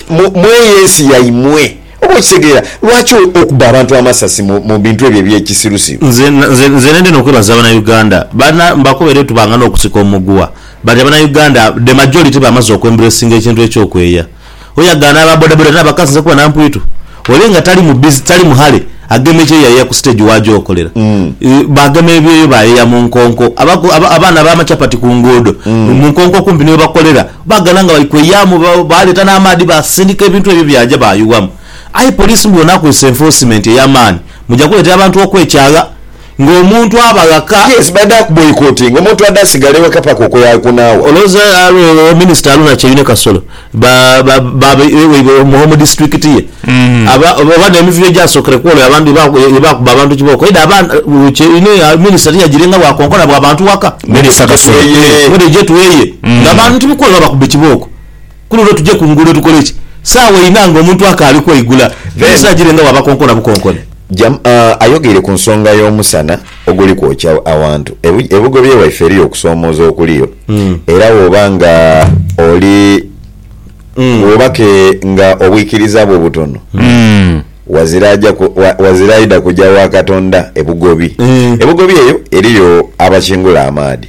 mu eyo ensi yaimwe. Oba okitegeera? Lwaki okuba abantu amasasi mu bintu ebyo eby'ekisirusiru? Nze, nze, nze nendha n'okwebaza Abanauganda. Bana, mbakobere oti banga n'okusika omuguwa. But Abanauganda, the majority bamaze okwembracinga ekintu eky'okweeya. Oyagaana aba bodaboda n'abakasinze kuba na mpwitu. Ole nga tali mu bizi, tali muhale, agema ekyeyo yayeya ku siteegi wa gy'okolera. Baagema ebyeyo baayeya mu nkonko. Abaku, aba, abaana ab'amachapati ku nguudo, mu nkonko okumpi ni we bakolera, baagana nga bali kweyaamu, ba, baaleeta n'amaadhi baasindika ebintu ebyo byaja baayuwamu. Aye poliisi mbu bw'enaakozesa enfosimenti ey'amaani, muja kuleetera abantu okwekyagha. nga omuntu aba ghaka. Yes baidha kuboycottinga omuntu ade asigale weka paka okwo yakunaawa. Olowoza alwo minister alwo na Kyeyune Kasolo ba ba ba weibwe omu district ye aba oba ne mivuyo egyasokere kwolwo abantu ye bakuba abantu kibooko eidha aba Kyeyune minister tiyajire nga bwa konkona bwa bantu waka. Minister Kasolo. Mwidhe gye tuweeye nga bantu kwolwo babakubbe kibooko. Ku luno tuje ku nguudo tukole ki? Saawa inha nga omuntu akaali kweigula, ebiseera gire nga wabakonkona bukonkoni. Jam, Ayogeire ku nsonga y'omusana oguli kwokya awantu. E Bugobe ewaife eriyo okusoomooza okuliyo era woba nga oli, woba ke nga obwikiriza bwo butono, wazira aja, wazira aidha kuja wa Katonda e Bugobi. E Bugobi eyo eriyo abakingula amaadhi.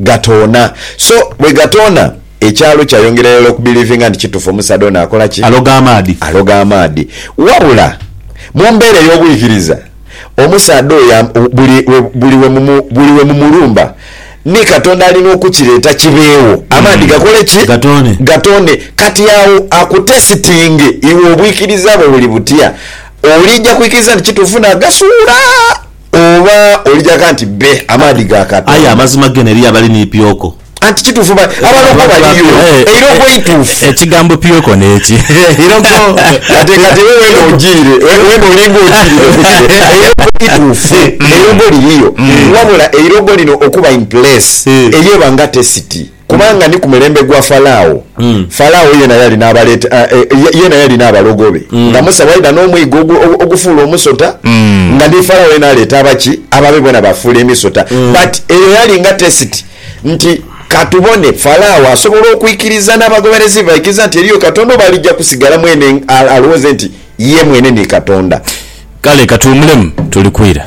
Gatoona. So bwe gatoona, ekyalo kyayongera irala okubelivinga nti kitufu omusaadha ono akola ki? Aloga amaadhi. Aloga amaadhi. Wabula, mu mbeera ey'obwikiriza, omusaadha oyo am, buli, buli we mumu, buli we mumulumba, ni Katonda alina okukireeta kibeewo, amaadhi gakole ki? Gatoone. Gatoone. Kati agho akutesitinge iwe obwikiriza bwo buli butya, oliija kwikiriza nti kitufu n'agasuula? Oba oli gha nti bbe, amaadhi ga Katonda. Aye amazima gene eriyo abali ni pyoko. Anti kituufu ba, abalokwa baliyo. Eirokwa eituufu. Ekigambo pyoko n'eki? Eirokwa. Kati, kati iwe weena ojiire, weena olinga ojiire ku kino. Eirokwa ituufu. Eirogo liriyo. Wabula eirogo lino okuba in place, eyo eba nga tesiti. Kubanga ni ku mulembe gwa Falao, Falao yeena yali n'abaleete, e, yeena yali n'abalogo be, nga Musa bw'aidha n'omwigo ogufuula omusota, nga ni Falao yeena aleeta abaki, ababe boona baafuula emisota. But eyo yali nga test nti, Ka tubone, Falao asobola okwikiriza n'abagoberezi be baikiriza nti eriyo Katonda, oba alija kusigala mwene alowooze nti ye mwene ni Katonda? Kale ka tuwumulemu, tuli kwira.